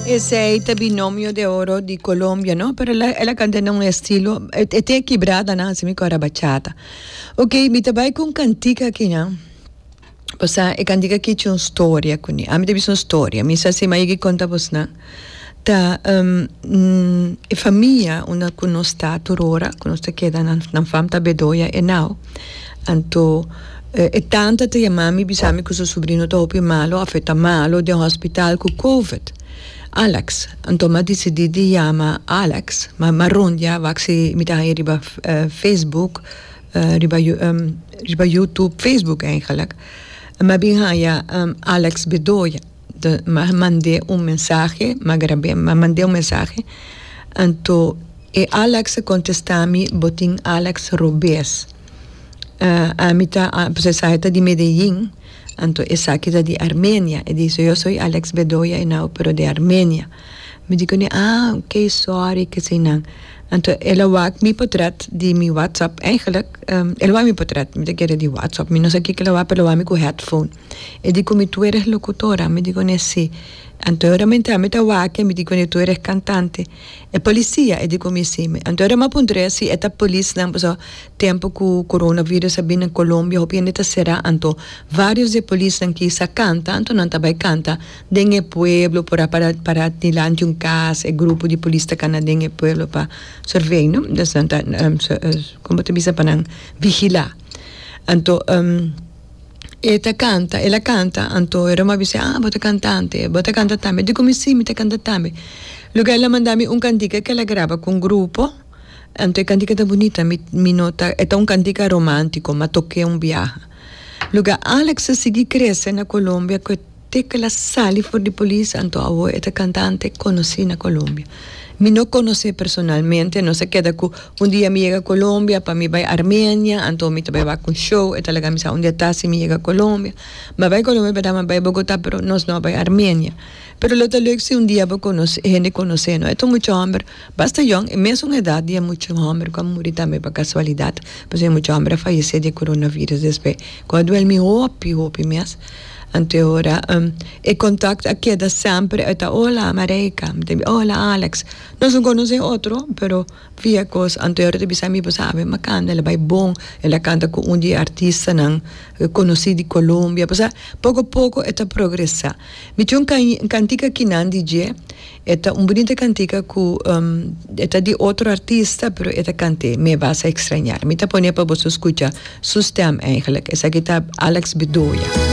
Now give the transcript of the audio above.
Esey ta binomio de oro di Colombia no pero el a el a canta na un estilo e e tin e kibrada nan así mi core a bachata ok mi ta bay cu un cantica akina pasa e cantica aki cu un storia cu ni ami ta bisa un storia mi sa si mi a yega y conta bos nan ta e famia unda cu nos ta aturora cu nos ta keda nan nan fam ta Bedoya henao. Anto e tanta ta yama mi bisa mi ku su subrino ta hopi malo afe ta malo den hospital ku covid. Alex, Anto mi a disidi di yama Alex, mi a rondia wak si mi ta haña riba facebook, riba riba youtube, facebook eigenlijk, mi a bin haña Alex Bedoya. Ma mand'é un mensahe, ma grab'é, ma mand'é un mensahe. Anto e Alex a kontestami, Bo tin Alex Robes. Ami ta, pues esaki ta di Medellín, anto esaki ta di Armenia. E dise, Yo soy Alex Bedoya Henao, pero di Armenia. Mi di kuné, Ah, ok, sorry, kesinan. Anto el a wak mi potret di mi WhatsApp. Eigenlik, el a wak mi potret, mi ta kere di WhatsApp. Mi no sa kiko el a wak, pero el a wak mi ku headphone. E di cu mi tu eres locutora. Mi di cu ne si. Anto e ora mi entra, mi ta wake, mi di cu ne tu eres cantante. E policia? E di cu mi si. Anto e ora mi a puntra e si e ta polisnan pasobra tempo cu coronavirus a bini na Colombia hopi hende ta cera. Anto varios di e polisnan kisa canta, anto nan ta bay canta den e pueblo por a para para dilanti un cas. E grupo di polis ta cana den e pueblo pa survey, no? Nos nan ta, como ta bisa pa nan? Vigila. Anto. e ta canta el a canta anto e roma bis'e ah bo ta cantante bo ta canta tambe di come si mi ta canta tambe luego el a manda mi un cantica que el a graba cu un grupo anto e cantica ta bunita mi mi no ta e ta un cantica romantico ma toke un biaha luego Alex a sigui crece na Colombia. Tecla sali for di polis anto awo e ta cantante conoci na Colombia. Mi no conocé personalmente, nos a keda cu un dia mi yega Colombia pa mi bay Armenia anto mi ta bay wak un show e ta laga mi sa un dia ta si mi yega Colombia. Mi a bay Colombia beda mi a bay Bogota pero nos no a bay Armenia. Pero lo ta leuk si un dia bo conoce hende conoce no. E ta un mucha homber basta yong e mes un edad di e mucha homber cu a muri tambe pa casualidad pasobra e mucha homber a fayece di e coronavirus despues cu a duel mi hopi hopi mes. Anto ora e contact a keda semper e ta hola Mareika, mi ta bi hola Alex, nos no conoce otro pero via cos anto ora ta bisa mi bo sabe Makanda la bay bon el a canta cu un di e artistanan conoci di Colombia pasa poco poco e ta progresa mi tin un can cantica kinan di dje e ta un bunita cantica cu e ta di otro artista pero e ta cant'e Me vas a extrañar mi ta pone pa boso scucha su stem eigenlijk esaki ta Alex Bedoya.